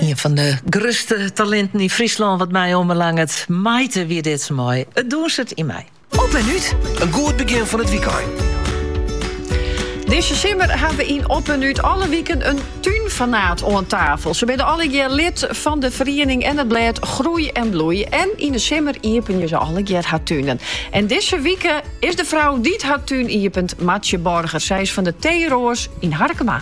Ien fan de grutste talinten yn Fryslân wat my oanbelanget. Maite wie dit mei It dûnset yn my. Op en út. In goed begjin fan it wykein. Dizze simmer ha we yn Op en út alle wiken in túnfanaat oan tafel. Se binne allegear lid fan de feriening en it blêd Groei en Bloei. En yn de simmer iepenje se allegear har tunen. En dizze wike is de frou dy't har tún iepent Martsje Borger. Sy is fan de Teeroas yn Harkema.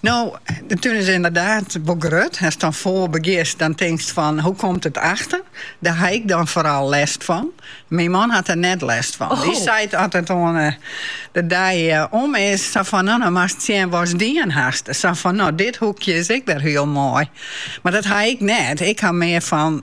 No, de tún is ynderdaad wol grut. Ast dan foar begjinst, dan tinkst fan, hoe komt it achter? Dêr ha ik dan foaral lêst fan. Myn man hat der net lêst fan. Dy seit as it oan de dei om is, sa fan, no, no moatst sjen watst dien hast. Sa fan, no, dit hoekje is ek wer hiel moai. Mar dat ha ik net. Ik ha mear fan,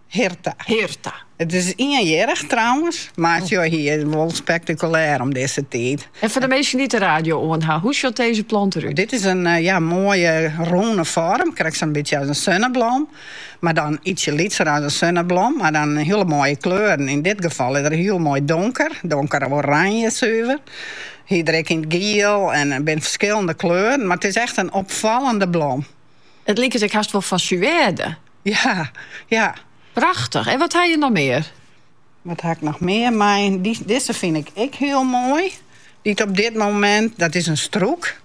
Hirta. It is ienjierrich trouwens, mar sjoch, hy is wol spektakulêr om dizze tiid. En foar de minsken dy't de radio oan ha, hoe sjocht dizze plant der út? Dit is in, ja, moaie rûne foarm, krekt sa'n bytsje as in sunneblom, mar dan ytsje lytser as in sunneblom, mar dan hiele moaie kleuren. Yn dit gefal is er hiel moai donker, donker oranje suver. Hy is der ek yn it giel en der binne ferskillende kleuren, mar it is echt in opfallende blom. It liket ek hast wol fan suède. Ja, ja. Prachtich. En wat ha je noch mear? Wat ha ik noch mear mei? Dizze fyn ik ek hiel moai. Dy't op dit momint, dat is in strûk.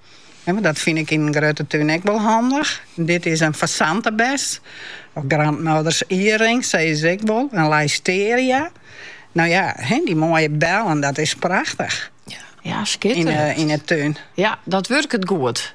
En dat fyn ik yn in grutte tún ek wol handich. Dit is in fasantebes. Of grandmothers earring, sizze se ek wol. In Leycesteria. No ja, dy moaie bellen, dat is prachtich. Ja, skitterend. Yn, eh, yn de tún. Ja, dat wurket goed.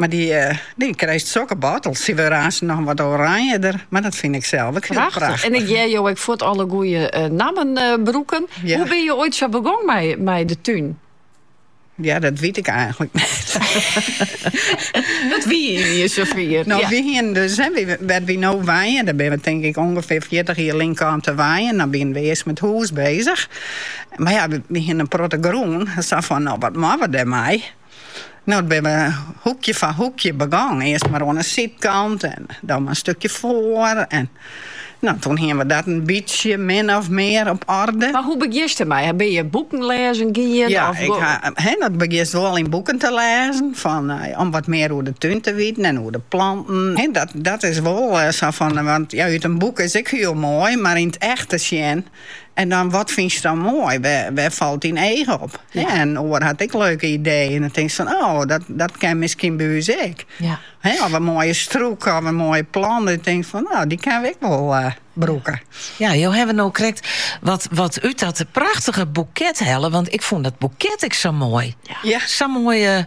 Mar dy, eh, dy krijt sokke bottels. Sy wurde aanst noch wat oranjeder, mar dat fyn ik sels ek hiel prachtich. En ik hear jo ek fuort alle goede eh, nammen eh, brûken. Hoe binne je oait sa begong mei, mei de tún? Ja, dat wyt ik eigenlik net. Dat wie sa fan. No, ja. Wy hiene dus, hè, wy, wêr't wy no wenje, dêr binne we tink ik ûngefear 40 jier lyn kaam te wenjen. Dan binne we earst mei 't hûs bezich. Mar ja, we hiene in protte grûn. Sa fan, no, wat moatte we dêrmei? No, toen binne we hoekje foar hoekje begong. Earst mar oan 'e sydkant en dan mar in stukje foar. En no, toen hiene we dat in bytsje min of mear op oarder. Mar hoe begjinst dermei? Binne je boeken lêzen gien? Ja, ik ha, he, dan begjinst wol yn boeken te lêzen fan, om wat mear oer de tún te witen en oer de planten. He, dat, dat is wol sa fan, want ja, út in boek is ek hiel moai, mar yn 't echte sjen En dan, wat fynst dan moai? Wêr falt dyn each op? Hè, in oar hat ek leuke ideeën. En dan tinkst fan, oh, dat, dat kin miskien by ús ek. Ja. Hè, of in moaie strûk, of in moaie plant. Dat je tinke fan, no, dy kinne we ek wol uh, brûke. Ja, jo hawwe no krekt wat, wat út dat prachtige boeket helle. Want ik fûn dat boeket ek sa moai. Ja. Sa'n moaie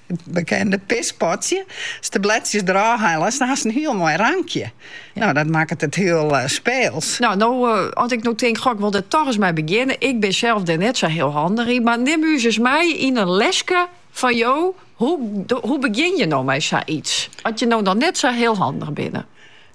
It bekende pispotsje. As de bledsjes derôf hellest hast in hiel moai rankje. No, dat makket it hiel speels. No, no, as ik no tink, goh, ik wol der dochs ris mei begjinne. Ik bin sels der net sa hiel handich yn, mar nim ús ris mei yn in leske fan jo. Hoe begjin je no mei sa iets, as je no noch net sa hiel handich binne?